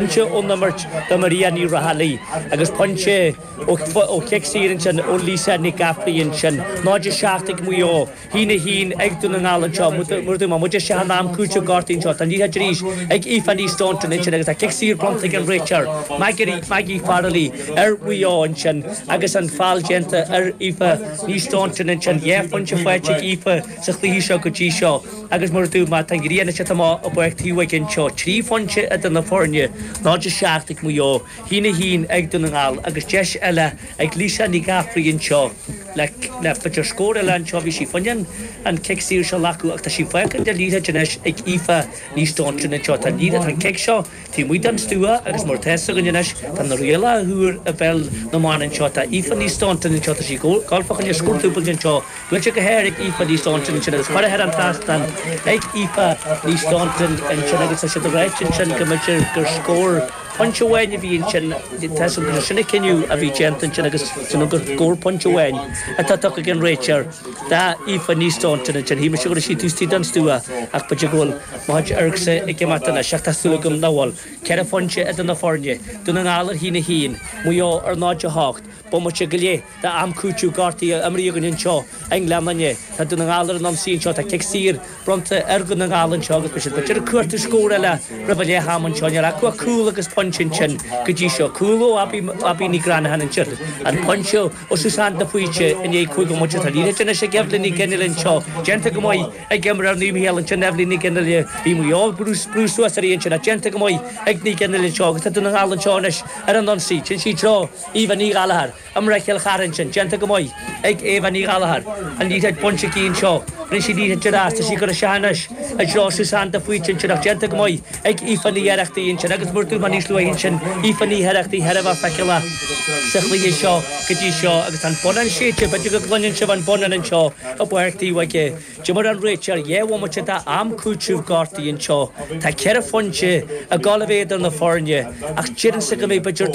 Pointe ón imirt do Maria Ní Raghallaigh agus pointe ó chic saor ansin ó Lisa Nic Gafraidh ansin. 0, 7 ag Maigh Eo, 1, 1 ag Dún na nGall anseo. Mar a dúirt mé muid isteach in am cúitimh gortaithe anseo. Tá an liathróid arís ag Aoife Ní Staunton ansin agus tá cic saor bronnta ag an réiteoir, Maggie Farrelly ar Mhaigh Eo ansin agus an feall déanta ar Aoife Ní Staunton ansin. Dhá phointe faighte ag Aoife sa chluiche seo go dtí seo. agus mar a dúirt mé tá an ghrian ag teacht amach i bPáirc Taobhóige anseo trí phointe idir na foirne, 0-7 ag Maigh Eo, a haon a haon ag Dún na nGall agus deis eile ag Lisa Nic Gafraidh anseo le le b'fhéidir scór eile anseo bhí sí fá choinne an cic saor seo a ghlacadh ach tá sí fágtha tá an liathróid anois ag Aoife Ní Staunton anseo tá an liathróid tá an cic seo Taobh amuigh den stua agus mar atá a fhios againn anois, tá na rialacha úra i bpeil na mban anseo. Tá Aoife Ní Staunton anseo, tá sí gáifeach anois dhá dúbailt anseo. Buailte go hard ag Aoife Ní Staunton ansin agus curtha thar an trasnán ag Aoife Ní Staunton ansin agus tá siad ag ráit ansin go mb'fhéidir gur scór pointe amháin a bhí ansin. Is cosúil gur sin an cinneadh a bhí déanta ansin agus is cosúil gur scór pointe amháin atá tugtha ag an réiteoir d'Aoife Ní Staunton ansin. Shíl mise go raibh sí taobh istigh den stua ach b'fhéidir go bhfuil. Má tá Ergser ag imeacht anois, ach tá súil agam nach bhfuil, ceithre phointe idir na foirne, Dún na nGall ar a haon a haon, Maigh Eo ar náid a hocht, bomaite go leith d'am cúitimh gortaithe imeartha againn anseo i nGleann Fhinne. Tá Dún na nGall ar an ionsaí anseo, tá cic saor bronnta ar Dhún na nGall anseo agus beidh siad ag iarraidh cuartú scór eile roimh an leath-am anseo. Níl acu ach cúl agus pointe ansin go dtí seo, cúl ó Abbie Ní Ghreanahan ansin agus pointe ó Suzanne de Faoite i ndiaidh cúig bhomaite. Tá an liathróid anois ag Eibhlín Nic Fhionnghaile anseo, déanta go maith, Ag imreoir Naomh Mícheál ansin Eibhlín Nic Fhionnghaile. Bhí Maigh Eo ag brú suas uirthi ansin ach déanta go maith ag Nic Fhionnghaile anseo agus tá Dún na nGall anseo anois ar an ionsaí, ansin i dtreo Aobha Ní Ghallachair. Imreoir Chill Charthaigh ansin, déanta go maith ag Aobha Ní Ghallachair. An liathróid bainte aici anseo, rinne sí liathróid dearfach, tá sí ag cur isteach anois i dtreo Suzanne de Faoite ansin ach déanta go maith. ag Aoife Ní Oireachtaigh ansin agus mar a dúirt mé níos luaithe ansin Aoife Ní hOireachtaigh thar a bheith feiceálach sa chluiche seo go dtí seo agus tá an bonnán séidte b'fhéidir go gcluineann sibh an bonnán anseo i bPáirc Taobhóige d'imir an réiteoir dhá bhomaite d'am cúitimh gortaithe anseo tá ceithre phointe go fóill idir na foirne ach déarfainnse go mbeidh b'fhéidir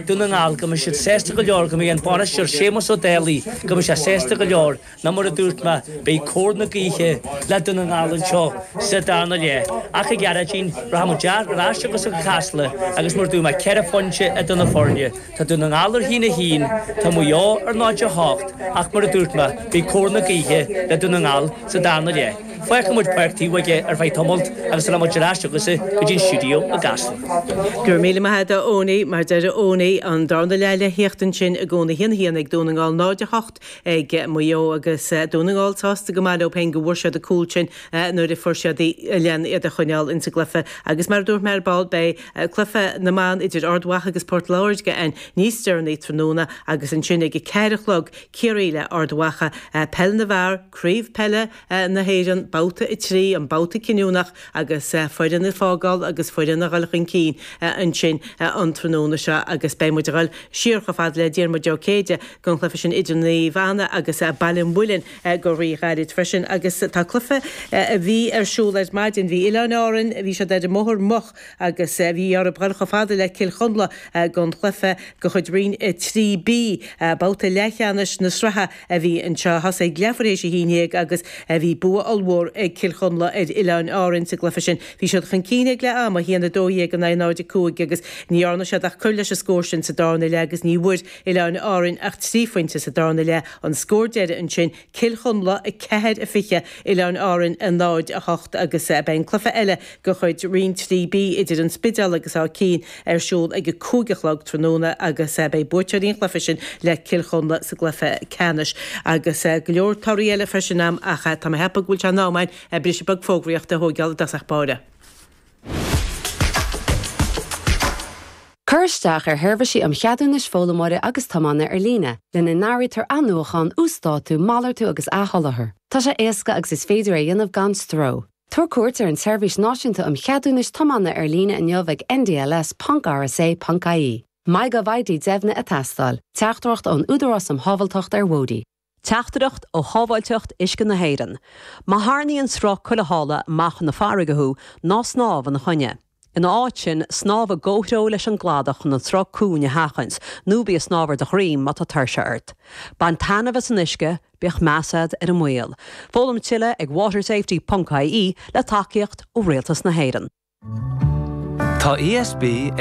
Dún na nGall go mbeidh siad sásta go leor go mbeidh an bainisteoir Séamus Ó Dálaigh go mbeidh sé sásta go leor Nó mar a dúirt mé, beidh cóir na gaoithe le Dún na nGall anseo sa darna leath ach, a Ghearóidín, rachaimid ar ais chugatsa go Casla agus mar a dúirt mé ceithre phointe idir na foirne, tá Dún na nGall ar a haon a haon, tá Maigh Eo ar náid a hocht ach, mar a dúirt mé, beidh cóir na gaoithe le Dún na nGall sa darna leath. Fágfaimid Páirc Taobhóige ar feadh tamalt agus rachaimid ar ais chugatsa go dtí an stiúideo i gCasla. Go raibh míle maith agat, a Eoiní. Mar a deir Eoiní, an darna leath le theacht ansin i gcónaí. Haon a haon ag Dún na nGall, 0, 8. ag Maigh Eo agus Dún na nGall sásta go maith leo féin go bhfuair siad an cúl sin nuair a fuair siad lena iad a choinneáil insa gcluiche agus mar a dúirt mé ar ball beidh cluiche na mban idir Ard Mhacha agus Port Láirge ann níos deireanaí tráthnóna agus ansin ag a ceathair a chlog Ciarraí le Ard Mhacha, Peil na bhFear, Craobh Peile na hÉireann, Babhta 3, an babhta cinniúnach agus foireann ag fágáil agus foireann ag dul chun cinn ansin an tráthnóna seo agus beidh muid ag dul siar chomh fada le Diarmuid Ó Céide don chluiche sin idir Naomh Anna agus Baile an Mhuilinn go rí-ghairid freisin agus tá cluiche a bhí ar siúl ar maidin, bhí Oileáin Árann, bhí siad ar an mbóthar moch agus bhí orthu dul chomh fada le Cill Chonla don chluiche de chuid Roinn 3B, babhta leathcheannais na sraithe. a bhí anseo, thosaigh sé ag leathuair théis a haon dhéag agus a bhí bua ollmhór ag Cill Chonla ar Oileáin Árann sa gcluiche sin. Bhí siad chun cinn ag leath ama, 1 12 in aghaidh 0 5, agus ní dhearna siad ach cur leis an scór sin sa darna leath agus ní bhfuair Oileáin Árann ach trí phointe sa darna leath. An scór deiridh ansin, Cill Chonla 4 20, Oileáin Árann 0 8, agus beidh an cluiche eile de chuid Roinn 3B idir an Spidéal agus Áth Cinn ar siúl ag a cúig a chlog tráthnóna agus beidh buaiteoirí an chluiche sin le Cill Chonla sa gcluiche ceannais agus go leor torthaí eile freisin ann ach tá mé ag ceapadh go bhfuil sé in am againn briseadh beag fógraíochta a thóigeáil i dtosach báire. Cur isteach ar sheirbhísí um Cheadúnais Foghlaimeora agus Tiomána ar líne, lena n-áirítear athnuachán, uasdátú, malartú agus athsholáthar. Tá sé éasca agus is féidir é a dhéanamh gan stró. Tabhair cuairt ar an tSeirbhís Náisiúnta um Cheadúnais Tiomána ar líne inniu ag ndls ponc rsa ponc ie. MyGovID deimhnithe ag teastáil. Teachtaireacht ón Údarás um Shábháilteacht ar Bhóithre. Teachtaireacht ó Shábháilteacht Uisce na hÉireann. Má tharrnaíonn sruth cúlaithe amach chun na farraige thú, ná snámh ina choinne. Ina áit sin, snámh i gcomhthreo leis an gcladach chun an sruth cúng a sheachaint, nó bí ag snámh ar do dhroim má tá tuirse ort. Bain taitneamh as an uisce, bíodh meas agat ar an mbaol. Foghlaim tuilleadh ag watersafety ponc ie, le tacaíocht ó Rialtas na hÉireann. Tá ESB ag.